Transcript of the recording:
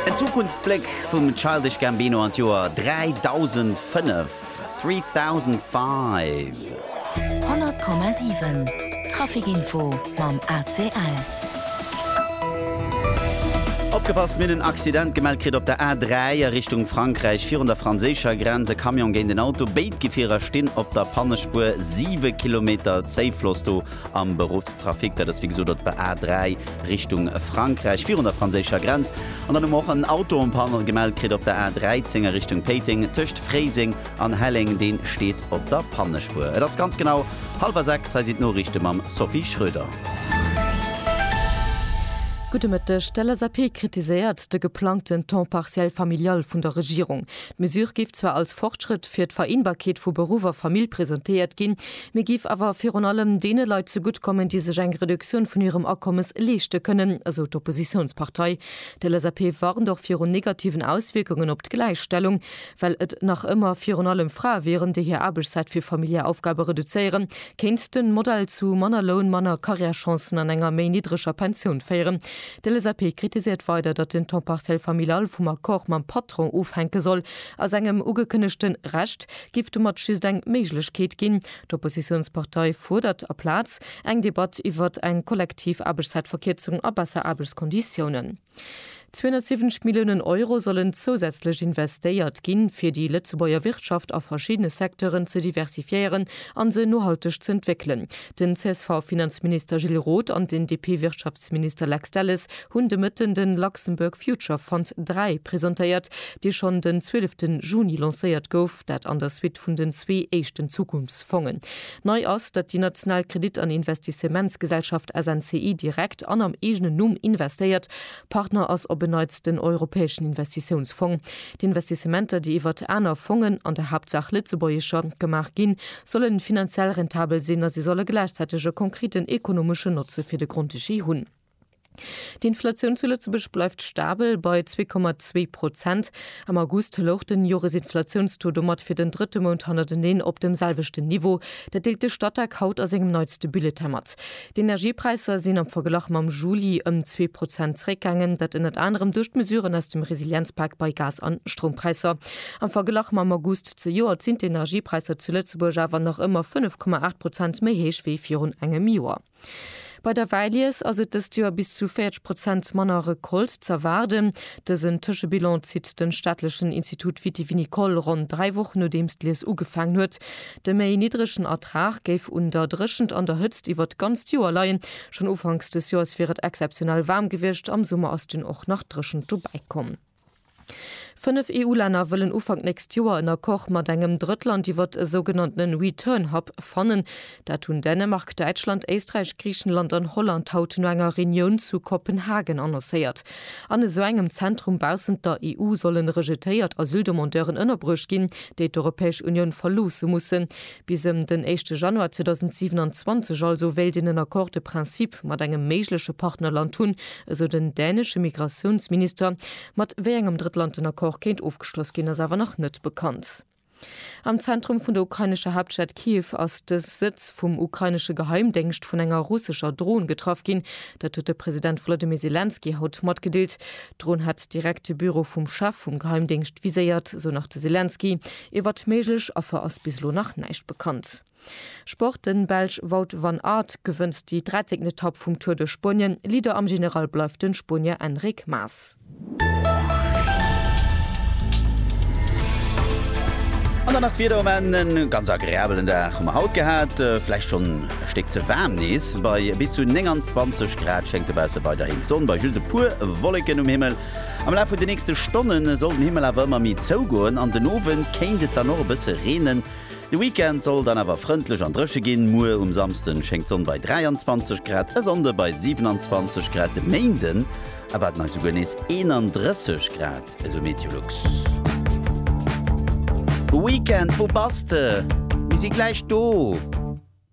En Zukunftsbléck vum Childish Gambino an d'Joer 3005, 3005. 100,7 Trafikinfo mam ACL. Opgepasst, Mir hunn en Accident gemellt kritt op der A3 a Richtung Frankräich virun der franséischer Grenz. E Camion géint en Auto, béid Gefierer stinn op der Pannespuer, siwe Kilometer Zéifloss do. am Beruffstrafic. Dat ass wéi gesot op der A 3 Richtung Frankräich, virun der franséischer Grenz. An dann hu mer och en Autopanne gemellt kritt op der A 13 a Richtung Péiteng, tëscht Fréiseng an Helleng. Dee steet op der Pannespuer. Et ass ganz genau hallwer sechs. Hei sinn d'Noriichte mam Sophie Schröder. Gudde Mëtteg. D'LSAP kritiséiert de geplangten Temps partiel familial vun der Regierung. D'Mesure géif zwar als Fortschrëtt fir d'Vereenbarkeet vu Beruff a Famill presentéiert ginn, Mee géif awer virun allem deene Leit zegutt kommen, déi sech eng Reduktioun vun hirem Akommes leeschte kënnen, esou d'Oppositiounspartei. D'LSAP warnt och virun negativen Auswierkungen op d'Gläichstellung, well et nach ëmmer virun allem Frae wieren, déi hir Aarbechtszäit fir familiär Aufgabe reduzéieren, kéint den Modell zu manner Loun, manner Carrièrechancen an enger méi niddreger Pensioun féieren. D'LSAP kritiséiert weider, datt den Temps partiel familial vum Accord mam Patron ofhänke soll a sengem ugekënnegten Recht, giff domat just eng Méiglechkeet ginn. D'Oppositiounspartei fuerdert aplaz eng Debatt iwwer eng kollektiv Aarbechtszäitverkierzung a besser Aarbechtskonditiounen. 270 Milliounen Euro sollen zousätzlech investéiert ginn, fir déi Lëtzebuerger Wirtschaft a verschiddene Secteuren ze diversifiéieren a se nohalteg z'entwéckelen. Den CSV-Finanzminister Gilles Roth an den DP-Wirtschaftsminister Lex Delles hunn de Mëtten de Luxembourg Future Fund 3 presentéiert, dee schonn den 12 Juni lancéiert gouf, dat an der Suite vun den zwee éischten Zukunftsfongen. Nei ass, datt déi national Kredit an Investissementsgesellschaft SNCI direkt an am eegenen Numm investéiert. Partner ass op en Neits den Europäeschen Investitiounsfong. D'Investissementer, déi iwwert aner Fongen, an der Haaptsaach lëtzebuergescher, gemaach ginn, sollen finanziell rentabel sinn a se solle gläichzäiteg e konkreten ekonomeschen Notze fir de Grand-Duché hunn. D'Inflatioun zu Lëtzebuerg bleift stabel bei 2,2 Prozent. Am August louch den Joresinflatiounstaux domat fir den drëtte Mount hannerteneen op dem selwechten Niveau. Dat deelt de Statec haut a sengem neitste Bulletin mat. D'Energiepräisser sinn am Verglach mam Juli ëm zwee Prozent zeréckgaangen. Dat ënnert anerem duerch d'Mesuren aus dem Resilienzpak bei Gas an Stroumpräisser. Am Verglach mam August zejoert sinn d'Energiepräisser zu Lëtzebuerg awer nach ëmmer 5,8 Prozent méi héich wéi virun engem Joer. Bei der Wäilies ass et dëst Joer bis zu 40 Prozent manner Recolte z'erwaarden. Dësen Tëschebilan zitt den staatlechen Institut Vitivinicole ronn dräi Wochen nodeems d'Lies ugefaangen huet. De méi niddregen Ertrag géif un der Dréchent an der Hëtzt iwwer d'ganzt Joer leien. Schonn ufanks des Joers wier et exzeptionell waarm gewiescht, am Summer ass dunn och nach d'Dréchent dobäi komm. Fënnef EU-Länner wëllen Ufank nächst Joer en Accord mat engem Drëttland iwwert e sougenannten Return Hub fannen. Dat hunn Dänemark, Däitschland, Éisträich, Griichenland an Holland haut no enger Reunioun zu Kopenhagen annoncéiert. An esou engem Zentrum baussent der EU sollen rejetéiert Asyldemandeuren ënnerbruecht ginn, déi d'Europäesch Unioun verloosse mussen. Bis ëm den éischte Januar 2027 also wéilt een en Accord de principe mat engem méigleche Partnerland hunn, esou den dänesche Migratiounsminister. Mat wéi engem Drëttland den Accord kéint ofgeschloss ginn, ass awer nach net bekannt. Am Zentrum vun der ukrainescher Haaptstad Kiew ass de Sëtz vum ukrainesche Geheimdéngscht vun enger russescher Dron getraff ginn. Dat huet de President Wolodymyr Selenskyj haut matgedeelt. D'Dron hätt direkt de Büro vum Chef vum Geheimdéngscht viséiert, esou nach de Selenskyj. Iwwert méiglech Affer ass bis elo nach näischt bekannt. Sport, Den Belsch Wout van Aert gewënnt déi drätten Etapp vum Tour de Spuenien. Leader am General bleift den Spuenier Enric Mas. An dann nach d'Wieder um Enn, E ganz agreabelen Dag hu mer haut gehat, vläicht schonn e Stéck ze waarm nees. Bei bis zu 29 Grad schéngt dobausse weiderhin d'Sonn, bei just e puer Wolleken um Himmel. Am Laf vun de nächste Stonne soll den Himmel awer ëmmer méi zougoen an den Owend kéint et dann och e bësse reenen. De Weekend soll dann awer frëndlech an dréche ginn. Muer um Samsden schéngt d'Sonn bei 23 Grad, e Sonnde bei 27 Grad, de Méinden erwaarden eis souguer nees 31 Grad, esou Meteolux. Weekend, wou bass de? Mir si gläich do!